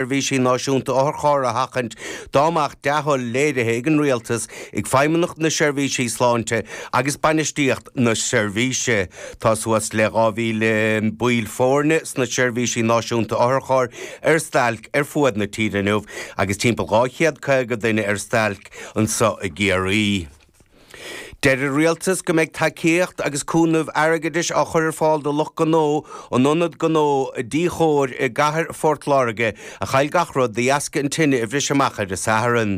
seirbhísí náisiúnta otharchairr a sheachaint dá mbeadh dea-thoil léirithe ag an Rialtas, ag Feidhmeannacht na Seirbhísí Sláinte agus bainistíocht na seirbhíse. Tá suas le 2,000 baill foirne sna seirbhísí náisiúnta otharchairr ar stailc ar fuaid na tíre inniu agus timpeall 250 duine ar stailc anseo i gCiarraí. Deir an Rialtas go mbeidh tacaíocht agus cúnamh airgeadais á chur ar fáil do lucht gnó in ionad gnó Tycor i gcathair Phort Láirge a chaill gach rud de dheasca an tine a bhris amach ar an Satharn.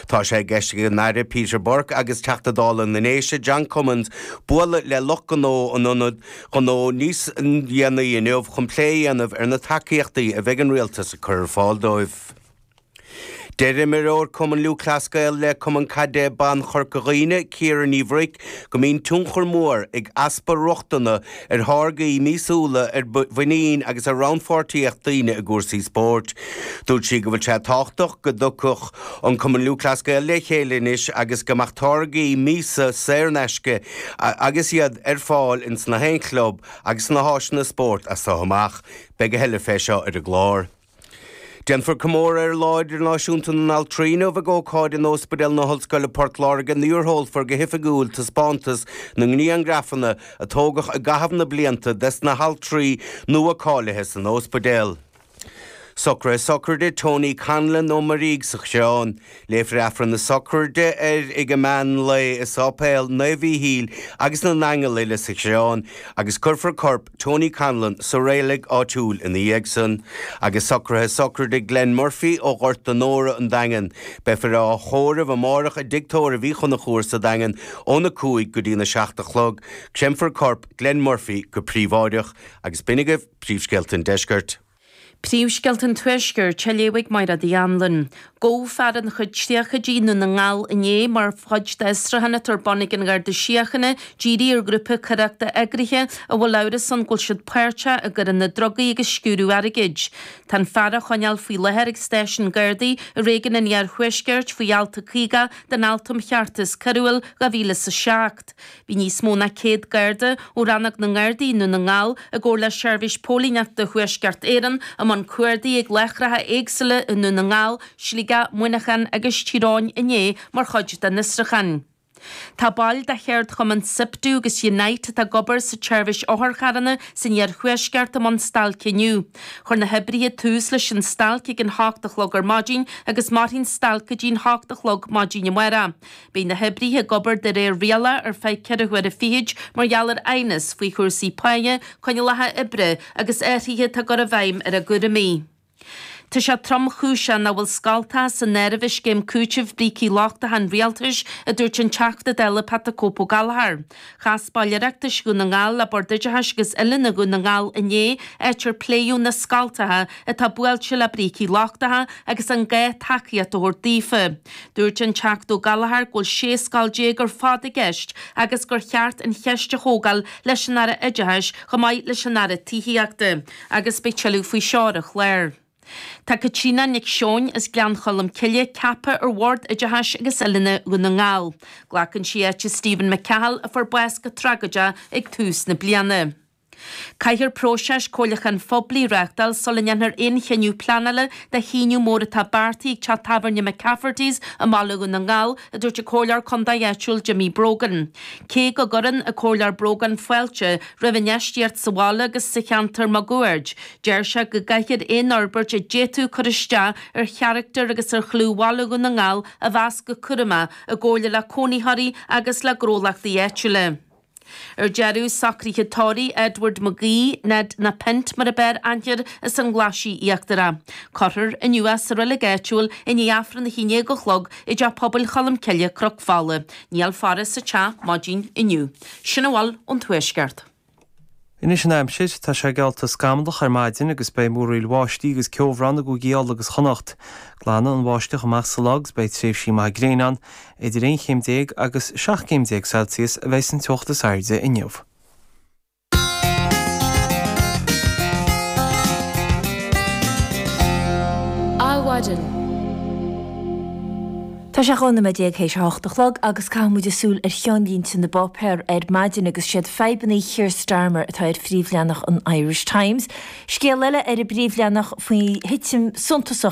Tá sé i gceist ag an Aire Peter Burke agus Teachta Dála na nDéise John Cummins bualadh le lucht gnó an ionad ghnó níos déanaí inniu chun plé a dhéanamh ar na tacaíochtaí a bheidh an Rialtas ag cur ar fáil dóibh. Deir imreoir Cumann Lúthchleas Gael le Cumann Caide Ban Chorca Dhuibhne, Ciara Ní Bhruic, go mbíonn tionchar mór ag easpa rochtana ar tháirgí míosúla ar mhuinín agus ar rannpháirtíocht daoine i gcúrsaí spóirt. Dúirt sí go bhfuil sé tábhachtach go dtiocfadh an Cumann Lúthchleas Gael le chéile anois agus go mbeadh táirgí míosa saor in aisce agus iad ar fáil ins na haonchlub agus sna háiseanna spóirt as so amach. Beidh a thuille fé seo ar an gclár. Déanfar comóradh ar Lá Idirnáisiúnta na nAltraí inniu ag ócáid in Óspidéal na hOllscoile Port Láirge nuair a sheolfar go hoifigiúil taispeántas na ngriangrafanna a tógadh i gcaitheamh na blianta des na haltraí nua cáilithe san óspidéal. Socraithe sochraide Tony Connellan ó Maree sa Choireán. Léifear Aifreann na Sochraide air ag meán lae i Sáipéal Naomh Mhíchíl agus na nAingeal uile sa Choireán agus cuirfear corp Tony Connellan sa reilig áitiúil ina dhiaidh san, agus socraithe sochraide Glenn Murphy ó Ghort an Óir, an Daingean. Beifear á thórramh amárach i dTigh Tórraimh Uí Chonchúir sa Daingean óna cúig go dtína seacht a chlog. Créamfar corp Glenn Murphy go príobháideach. Agus b'in agaibh príomhscéalta an Deiscirt. Príomhscéalta an Tuaiscirt á léamh ag Máire D. Anluain. Gabhadh fear ina chuid tríochaidí i nDún na nGall inné mar chuid d'fhiosrúchán atá ar bun ag an Garda Síochána ag díriú ar ghrúpa coireachta eagraithe a bhfuil amhras ann go bhfuil siad páirteach i gcoireanna drugaí agus sciúradh airgid. Tá an fear á choinneáil faoi láthair ag Stáisiún Gardaí i réigiún an iarthuaiscirt faoi Alt 50 den Acht um Cheartas Coiriúil 2007. Bhí níos mó ná 100 Garda ó Rannóg na nGardaí i nDún na nGall i gcomhar le Seirbhís Póilíneachta Thuaisceart Éireann i mbun cuardaigh ag láithreacha éagsúla i nDún na nGall, Sligeach, Muineachán agus Tír Eoghain inné mar chuid den fhiosrúchán. Tá baill de cheardchumann Siptu agus Unite atá ag obair sa tseirbhís otharcharranna san iarthuaisceart i mbun stailce inniu. Chuir na hoibrithe tús leis an stailc ag an hocht a chlog ar maidin agus mairfidh an stailc go dtí an hocht a chlog maidin amárach. Beidh na hoibrithe ag obair de réir rialach ar feadh ceithre huaire fichead mar gheall ar aighneas faoi chúrsaí páighe, coinníollacha oibre agus athruithe atá á gcur i bhfeidhm ar a gcúraimí. Tá sé tromchúiseach nach bhfuil scoltacha san áireamh i scéim cúitimh brící lochtacha an Rialtais, a dúirt an Teachta Dála Pat the Cope O'Gallagher. Chas baill Oireachtais Dhún na nGall le Bord Oideachais agus Oiliúna Dhún na nGall inné, áit ar pléadh na scoltacha atá buailte le brící lochtacha agus an gá tacaíocht a thabhairt daofa. Dúirt an Teachta Ó Gallagher go bhfuil 16 scoil ar fad i gceist agus gur cheart an cheist a thógáil leis an Aire Oideachais chomh maith leis an Aire Tithíochta agus beidh tuilleadh faoi seo ar an chlár. Tá Caitríona Nic Seoin as Gleann Cholm Cille ceaptha ar Bhord Oideachais agus Oiliúna Dhún na nGall. Glacann sí áit Stephen McCahill a fuair bás go tragóideach ag tús na bliana. Caithfear próiseas comhairliúcháin phoiblí a reáchtáil sula ndéanfar aon chinneadh pleanála do shíneadh mór atá beartaithe ag teach tábhairne McCafferty's i mBaile Dhún na nGall, a dúirt an Comhairleoir Contae áitiúil Jimmy Brogan. Cé go gcuireann an Comhairleoir Brogan fáilte roimh infheistíocht sa bhaile agus sa cheantar maguaird, Deir sé go gcaithfear aon fhorbairt a d'fhéadfadh cur isteach ar charachtar agus ar chlú Bhaile Dhún na nGall a mheas go cúramach, i gcomhairle le cónaitheoirí agus le gnólachtaí áitiúla. Ar deireadh, socruithe tórraimh Edward McGee, Ned na Paint mar ab fhearr aithne air as an nGlaisigh Íochtarach. Cuirfear inniu é sa reilig áitiúil i ndiaidh Aifreann a hAon Déag a Chlog i dTeach Pobail Cholm Cille, Cnoc Fola. Níl faire sa teach maidin inniu. Sin a bhfuil ón Tuaisceart. Anois an aimsir, tá sé geallta scamallach ar maidin agus beidh múraíl bháistí agus ceobhrán i gCúigí Uladh agus Chonnacht. Glanfaidh an bháisteach amach sa lá agus beidh tréimhsí maithe gréine ann. Idir aon chéim déag agus seacht gcéim déag Celsius a bheidh san teocht is airde inniu. Adhmhaidin. Tá sé dhá nóiméad déag théis a hocht a chlog agus caithfidh muid súil ar cheannlínte na bpáipéar ar maidin agus siad fadhbannaí Keir Starmer atá ar phríomhleathanach an Irish Times. Scéal eile ar an bpríomhleathanach faoi thitim suntasach